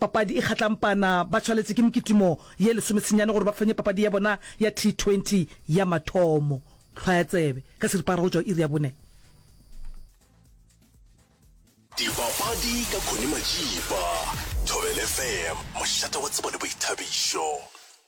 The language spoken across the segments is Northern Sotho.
Papadi e Kgatlampana ba tshwaletše ke mekitimo ye lesome senyane gore ba fenye papadi ya bona ya T20 ya mathomo. Hlwaya tsebe ka seripagare go tšwa go iri ya bone. Dipapadi ka Connie Majiba, Thobel FM, mošate wa tsebo le boithabišo.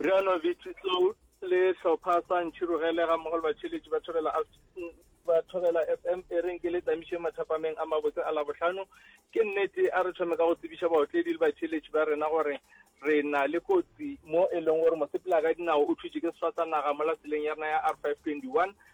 Riano Vitsitsou le hlopha sa Ntšhirogele ga mmogo le batšheletši ba thobela ba thobela fm e reng ke le tamišeng mathapameng a mabotse a labohlano ke nnete a re thome ka go tsebiša baotledi le batšheletši ba rena gore re na le kotsi mo e leng gore mosepela ka dinao o thutše ke sefatsa naga mo laseleng ya rena ya r 521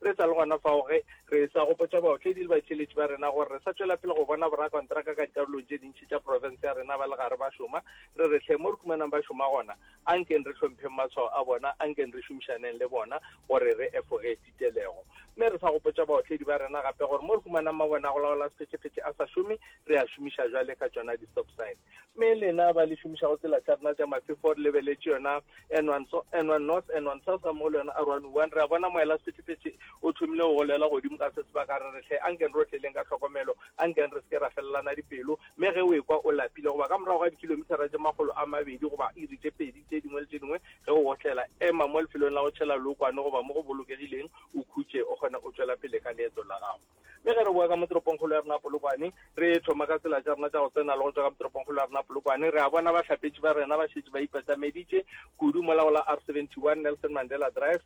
Re sa le gona fao, ge re e-sa go botša baotledi le batheeletši ba rena gore re sa tšwela pele go bona borakontraka ka dikarolong tše dintši tša profense ya rena ba le gare ba šoma, re re hle mo re humanang ba šoma gona, a nkeng re hlompheng matshwao a bona, a nkeng re šomišaneng le bona gore re efoge titelego. Mme re sa go botša baotledi ba rena gape gore mo re humanang mabone a go laola sephetšephetše a sa šome, re a šomiša bjale ka tšona di-stop sign. me lena ba le šomišago tsela tša rena tša mafe fo re lebeletše yona n1 north n1 south ga mmogo le yona r1 one re a bona moela sephethephethe o thomile go golela godimo ka se sebaka re retlhe a nkeng rotleleng ka tlhokomelo a nkeng re seke ra felelana dipelo mme ge o ekwa o lapile goba ka morago ga dikilomithara tše magolo a mabedi goba iri tše pedi tše dingwe le tše dingwe ge o otlela ema mo lefelong la go tšhela lookwane goba mo go bolokegileng o khutše o kgone o tšwela pele ka leeto la gago Mme ge re boa ka mo toropongkgolo ya rena Polokwane, re thoma ka tsela tša rena tša go tsena le go tšwa ka mo toropongkgolo ya rena Polokwane, re a bona bahlapetši ba rena ba šetše ba ipatameditše kudu mola go la R71 Nelson Mandela Drive,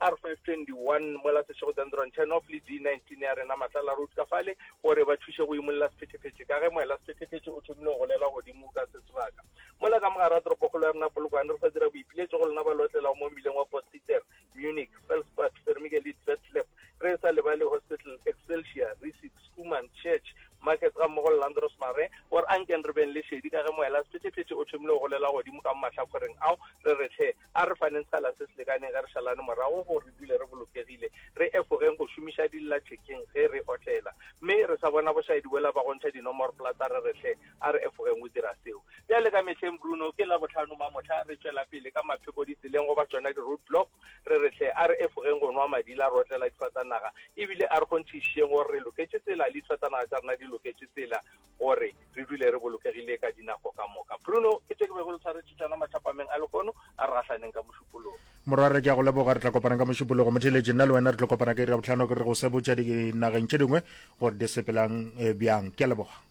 R521 mola Seshego Dendron Chernoff le D19 ya rena Matlala Road ka fale gore ba thuše go imolla sephethephethe. Ka ge moela sephethephethe o thomile go golela godimo ka se sebaka mola ka mogare ga toropokgolo ya rena Polokwane, re sa dira boipiletšo go lena ba lotlelago mo mmileng wa Potgieter, Munich, Felspad, Vermigelid, Vetlep, re sa lebale Hospital, Excelsior, Riesig, Schoeman, Church, Market ga mmogo le Landros Mare, gore a nkeng re beng le šedi ka ge moela sephetšephetše o thomile go golela godimo ka mo mahlakoreng ao, re re hle a re faneng sekgala se se lekaneng ge re šalane morago gore re dule re bolokegile, re efogeng go šomiša dillathekeng ge re otlela, mme re sa bona bošaedi boela ba go ntšha dinomorplata, re re hle. A re efogeng o dira seo. Bjale ka mehleng, Bruno, ke Labohlano mamohla, re tšwela pele ka mapheko ditseleng goba tšona di-roadblock, re re hle, a re efogeng go nwa madila re otlela difatanaga, e bile a re kgonthišišeng gore re loketše tsela le difatanaga tša rena di loketše tsela gore re dule re bolokegile ka dinako ka moka. Bruno, ke tše ke bego le tshwaretše tšona mathapameng a lehono, a re gahlaneng ka mošupologo. Morwarre, ke a go leboga. Re tla kopana ka mošupologo. Motheeletši, nna le wena re tlo kopana ka Irabohlano, ke re go sebotša dinageng tše dingwe gore di sepelang eh, bjang. Ke a leboga.